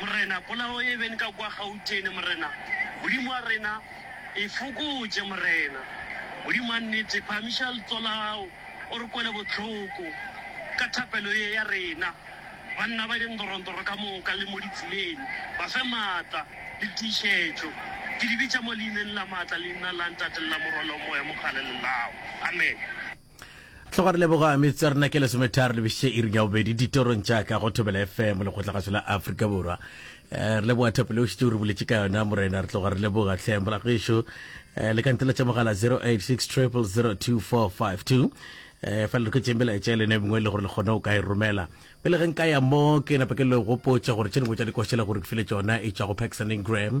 Morena, polao e be nka kwa Gautene, Morena. Modimo wa rena, e fokotše, Morena. Modimo wa nnete, phahamiša ltso la gago, o re kwele bohloko ka thapelo ye ya rena. Banna ba dindorontoro ka moka le mo ditseleng, ba fe maatla le tiišetšo. Ke di bitša mo Leineng la maatla, Leina la Ntate le la Morwa le wa Moya Mogale le lago. Amen. Tloga re leboga metsotso ya rena ke lesometharo lebešitše iring ya bobedi ditorong tša ka go thobela fm lekgotlagatšo la afrika borwa eh, re leboga thapo le o šitše o re boletše ka yona morena re tloga re leboga tlheng morago ešo eh, le ka ntela tša mogala 086 002452 eh fa le re ketseng bela etša lene mengwe e le gore le kgone o ka e romela pele ge nka ya mo ke napa ke le gopotša gore tše dingwe tša dikošela gore ke file tšona e tšwa go paxaning gram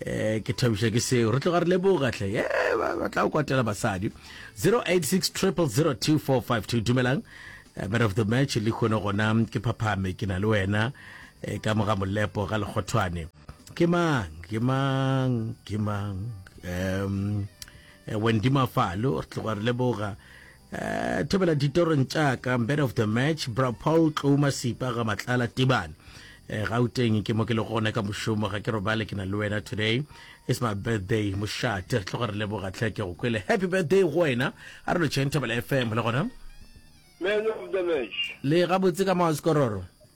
Eh, ke thabiša ke seo re tloga re leboga tle ye ba ba tla o kwatela basadi 086 000245 dumelang Eh, man of the match le kgone gona ke phaphame ke na le wena eh, ka moga molepo ga lekgothwane ke mang ke mang ke mang um wendi mafalo re tloga re leboga Eh, thobela ditorong tša ka man of the match bra paul tlouma sipa ga matlala tibane eh, gauteng ke mo ke le gone ka mošomo ga ke robale ke na le wena today is my birthday mošate re tloga re leboga tlhe ke go kwele happy birthday go wena a re lotšheng thobela fm le gona man of the match le gabotse ka maoskororo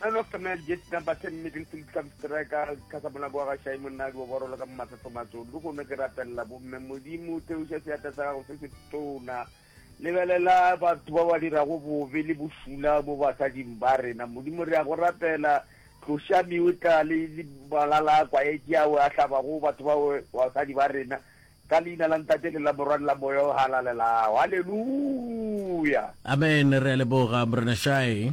None of Samuel Jesi Namba Ten Middle Field Club Striker ka sa monako wa gašai monadi wa borolo ka momatsetso matso le gone ke rapelela bomme modimo theoša seatla sa gago se se tona lebelela batho ba ba dirago bobe le bošula mo basading ba rena modimo re ya go rapela tloša meotla le malala a kwaetše ao a hlabago batho ba basadi ba rena ka leina la ntate le la morwa le la moya o halalelago halleluya amen re a leboga morena shae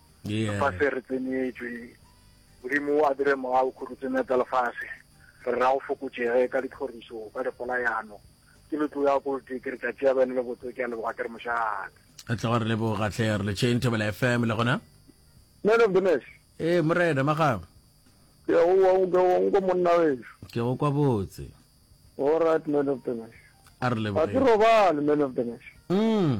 lefase re tsenyetšwe, Modimo o a dire moya o khurutse metsa lefase, re ra go fokotšege ka ditlhoriso, ka dipolayano, ke le tlo ya kote, ke re tša tšea bene le botse, ke a leboga ke re mošate. Re tla go re leboga tlhe, re letšeng Thobela FM le gona. Man of the match. Ee morena magabo. Ke a go wa nke wa nko monna wešo. Ke go kwa botse. All right man of the match. A re leboge. Ga ke robale man of the match. Mm.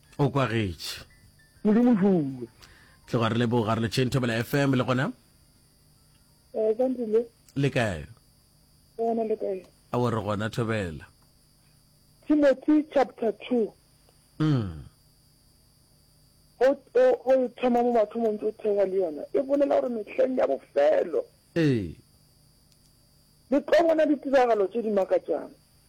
O kwagetše. Modimo rule. Tle gwa re leboga re le Chain Thobela FM le gona. Eh ka ndile. Le kae? Gona le kae? A wo re gona Thobela. Timothy chapter 2. Mm. Go go thoma mo batho mo ntse thewa le yona. E bolela gore mehleng ya bofelo. Eh. Le tlo bona ditiragalo tse di makatsang.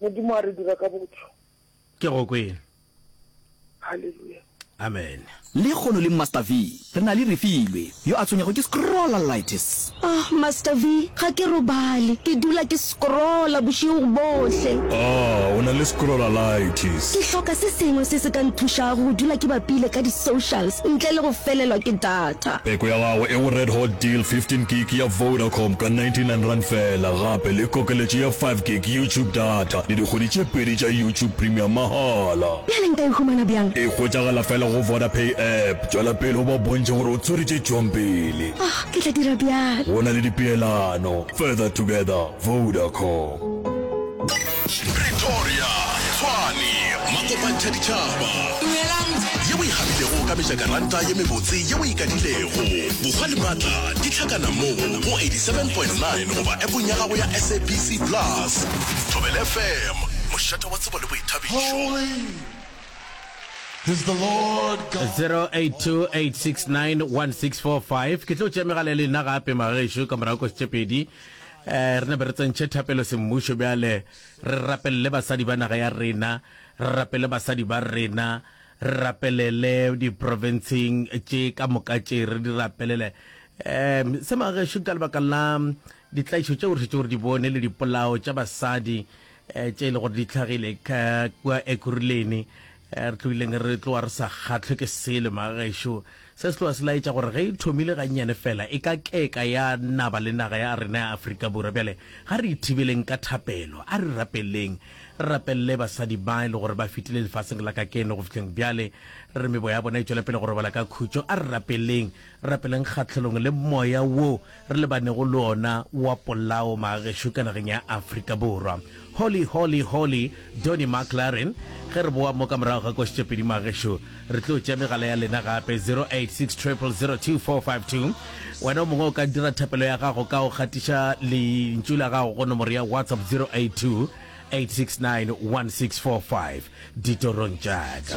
Modimo a re dira ka botho. Ke go kwele. Hallelujah. Amen. Le kgono le Master V. Re na le Refilwe, yo a tshwenyago ke scrollalitis. Oh, Master V, ga ke robale. Ke dula ke scrolla bošego bohle. Oh, o na le scrollalitis. Ke hloka se sengwe se se ka nthušago go dula ke bapile ka di-socials ntle le go felelwa ke data. Peko ya gagwe e go Red Hot Deal 15 gig ya Vodacom ka 99 rand fela gape le kokeletšo ya 5 gig YouTube data le dikgwedi tše pedi tša YouTube Premium mahala. Bjale nka e humana bjang? E hwetšagala fela go Vodapay app. Tšwela pele o ba bontšhe gore o tswere tše tšwago pele. Oh, ke tla dira bjalo. Go na le dipeelano. Further together, Vodacom. Pretoria, Tshwane, Makopantsha Ditšhaba. Dumelang. Ye o e gabilego ka mejakaranta ye mebotse ye o e kadilego. Bokgwa le matla di hlakana mo go 87.9 goba appong ya gago ya SABC Plus. Thobela FM, mošate wa tsebo le boithabišo. 0828691645 ke tlo tšea megala le nna gape magaešo ka morago kwa setšepedi Eh, re ne be re tsentšhe thapelo semmušo bjale re rapelele basadi ba naga ya rena re rapele basadi ba rena re rapelele diprovinceng tše ka moka tše re di rapelele um se magešo ka lebaka la ditlaišo tšeo re šetše gore di bone le dipolao tša basadi eh, tše e le gore di tlhagile ka kua ekuruleni eh, re tlogileng re tloa re sa kgatlhwe ke selo magaešo se se tloa se laetša gore ge e thomile gannyane fela e ka keka ya naba le naga ya rena ya aforika borwa bjale ga re ithibeleng ka thapelo a re rapeleng re rapelele basadi ba e le gore ba fetile lefatsheng la ka keno go fitlheng bjale re mebo ya bona e tšwela pele go robala ka khutšo a re rapeleng Re rapeleng kgahlelong le moya wo re lebanego le ona wa polao magagešo ka nageng ya Afrika Borwa. Holy, holy, holy, Donny McLaren. Ge re boa mo ka morago ga košetšopedi magagešo, re tlo tšea megala ya lena gape, 0860000252. Wena o mongwe o ka dira thapelo ya gago ka go gatiša lentšu la gago go nomoro ya WhatsApp 0828691645. Ditorong tša ka.